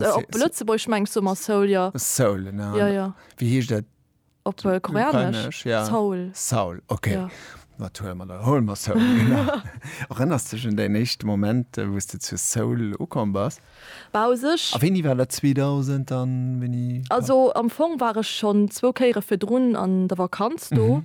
Äh, op Se- Lëtzebuergesch mengs du mat Soul, jo. Soul, an Ja, jo. wéi heescht dat? Op äh, Koreanesch? Ukrainesch, ja. Soul. Soul, okay. Jo. Wat hole mer da? Hole mer Soul, genau. Erënners du dech un däin éischte Moment, äh, wou s du zu Soul ukomm bass? Bah, u sech, A wéini war dat? 2000 an wéini? also am Fong war ech schonn zwou Kéiere virdrun an der Vakanz do.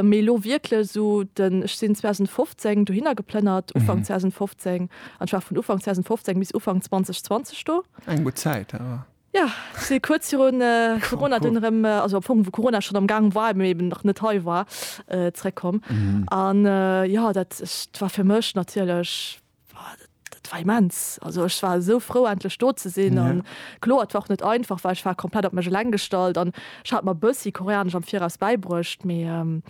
Mee elo wierklech esou den, ech sinn 2015 dohinner geplënnert, Ufank 2015, an ech war vun Ufank 2015 bis Ufank 2020 do. Eng gutt Zäit awer. Jo, si kuerz virun Corona dunn erëm, also am Fong wou Corona schonn am Gaang war, mee eben nach net hei war, zeréckkomm. An jo, dat war fir mech natierlech war immens also ich war so froh endlich do ze sinn an ja. klo war net einfach weil ich war komplett op mech leng gestalt an ich hat mal bëssi koreanisch am viraus beibrucht mir ähm,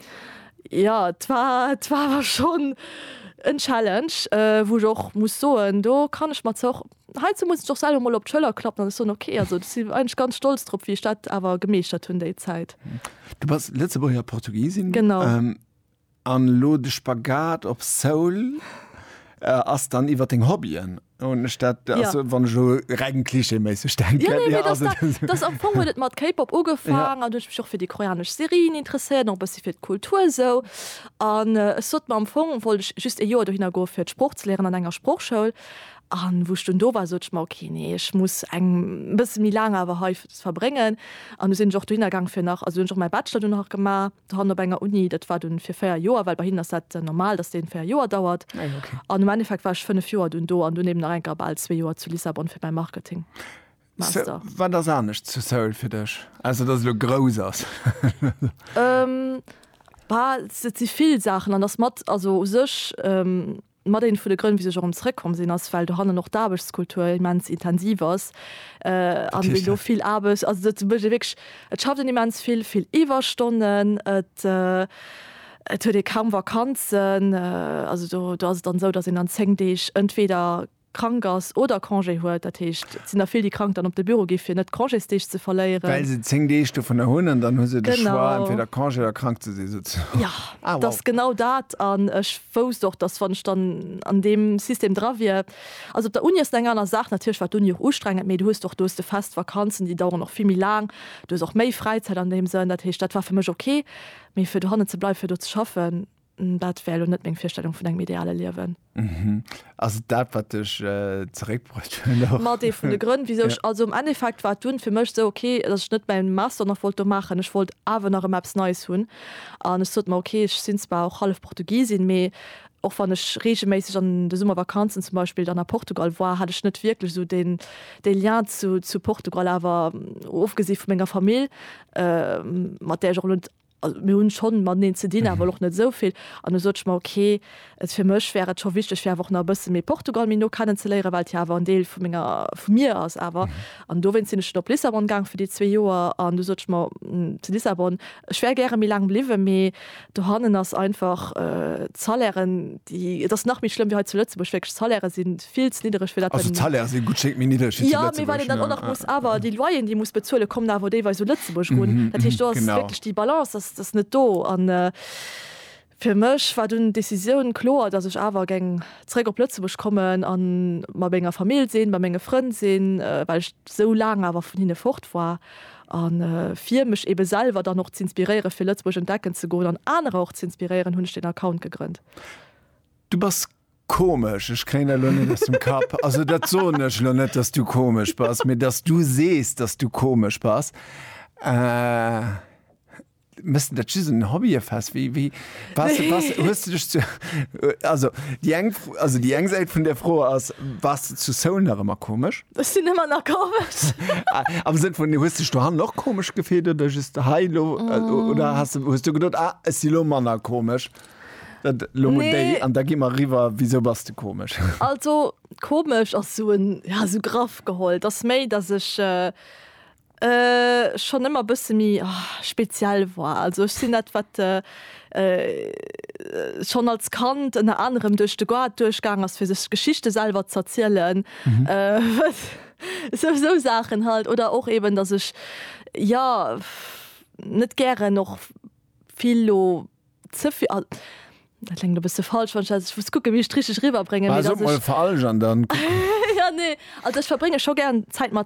ja war war war schon en challenge äh, wo ich och muss soen do kann ich mat zoch heize muss ich doch selber mal op Schëller klappen so okay also eigentlich ganz stolz trop wie Stadt awer gemeeschtert hunn déi Zeit du was letzte Portugiesin genau ähm, An lo de Spagat op Soul ass dann iwwer deng Hobbyen? Hunn ech dat, Ja. also wann ech elo reng klischeeméisseg denken, Ja, nee, mee dass dat, dass am Fong huet et mat K-Pop ugefaangen, an du huet ech mech och fir déi koreanesch Serien interesséiert, och e bëssi fir d'Kultur esou. An ech sot mer, am Fong wollt ech just e Joer dohinner goe fir d'Sprooch ze léieren an enger Sproochschoul. An wou ech dunn do war, sot ech mer, ok, nee, ech muss eng e bësse méi laang awer hei verbréngen. An du sinn ech och dohinner gaang fir nach, also hunn ech och mäi Bachelor do nach gemaach. Dran op enger Uni, dat war dunn fir 4 Joer, well bei hinnen ass dat normal, datt deen 4 Joer dauert. Ah jo, okay. An um Endeffekt war ech 5 Joer dunn do an dunn eben nach enker bal 2 Joer zu Lissabon fir mäi Marketing. Sou, Master. wat ass anescht zu Seoul fir dech, ausser datt et elo grouss ass? Ähm, bah, et si vill Saachen an ass mat, also u sech, Mat een vun de Grënn, wéisu ech och erëm zrëckkomm sinn, ass, well dohannen och d'Aarbechtskultur immens intensiv ass a wéi do vill Aarbecht, also et mécht ee wierklech, et schafft een immens vill, vill Iwwerstonnen, et huet ee kaum Vakanzen. Also do ass et dann esou, datt een an zéng Deeg entweeder krank ass oder Congé huet, dat heescht, et sinn der vill, déi krank dann op de Büro gi fir net Congésdeeg ze verléieren. Well se 10 Deeg dovunner hunn an dann hu se de Choix, entweder Congé oder krank ze sinn souzesoen. Jo, et ass genau dat. An ech wousst och, datt, wann ech dann an deem System dra wier, also op der Uni ass et eng aner Saach, natierlech war d'Uni och ustrengend, mee du hues och, do hues de fest Vakanzen, déi daueren och vill méi laang, du hues och méi Fräizäit an deem Sënn, dat heescht, dat war fir mech ok. Mee fir dohannen ze bleiwen, fir do ze schaffen, Dat wär elo net meng Virstellung vun engem ideale Liewen. Mhm. Ass et dat, wat dech äh, zeréckbruecht huet? och? Mat ee vun de Grënn, wisou Ja. ech also am Endeffekt war dunn fir mech sou, okay, datt ech net mäin Master nach wollt do maachen. Ech wollt awer nach ëmmer eppes Neies hunn an ech sot mer, okay, ech sinn zwar och hallef Portugisin, mee och wann ech reegelméisseg an de Summervakanzen zum Beispill dann a Portugal war, hat ech net wierklech esou deen, dee Lien zu, zu Portugal. Awer ofgesi vu menger Famill, äh, mat där ech och elo net Also mir hunn schonn mateneen ze dinn, awer elo och net esou vill. An du sot ech mer, ok, et fir mech wär et scho wichteg fir awer och nach e bësse méi Portugal méi no kennen ze léieren, well et jo awer en Deel vu menger, vu mir ass awer. An dowéinst sinn ech dann op Lissabon gaang fir déi zwee Joer. An du sot ech mer, zu Lissabon, ech wär gäre méi laang bliwwen, mee dohannen ass einfach d'Salairen, déi, et ass nach méi schlëmm wéi hei zu Lëtzebuerg, wierklech d'Salairen sinn, vill ze niddereg fir dat also d'Salaire si gutt schéngt méi niddereg wéi zu Lëtzebuerg jo mee well een dann och nach muss awer déi Loyeren déi een muss bezuelen kommen awer deelweis u Lëtzebuerg erun mhm dat heescht do ass wierklech déi Balance ass ass net do an fir mech war dunn d'Decisioun kloer datt ech awer geng zréck op Lëtzebuerg kommen a mat menger Famill sinn bei menge Frënn sinn well ech sou laang awer vun hinne fort war a fir mech ebe selwer dann och z'inspiréiere fir Lëtzebuerg entdecken ze goen an anerer och z'inspiréieren hunn ech deen Account gegrënnt. Du bass Komesch, ech kréien dat elo net aus dem Kapp. Also dat soen ech elo net, dass du komesch bass, mee dass du sees, dass du komesch bass. Äh. Mëssen dat just en Hobbyefest? Wéi, wéi, bass, bass, hues de dech zu, also déi eng, also déi eng Säit vun där Fro ass, Bass de zu Seoul nach ëmmer komesch? Ech sinn ëmmer nach komesch. Am Sënn vun, hues dech dohannen och komesch gefillt oder just hei elo? Oder has de, hues du geduet, ah, ech si elo manner komesch? Dat lo mol déi, an da gi mer eriwwer, wisou bass de komesch? Also, komesch ass esou en, ja, esou graff geholl. Et ass méi, datt ech schonn ëmmer e bësse méi speziell war. Also ech sinn dat, wat schonn als Kand ënner anerem duerch de Goart duerchgaang ass, fir sech d'Geschichte selwer z'erzielen, esou, esou Saachen halt. Oder och eben, datt ech, jo, net gären och vill lo. ze vill, also dat klengt e bësse falsch, wann ech dat, ech muss kucken, wéi ech et richteg eriwwerbréngen, mee Bah, dass sot mol ech, falsch an dann kucken. jo, nee, also ech verbrénge scho gären Zäit mat.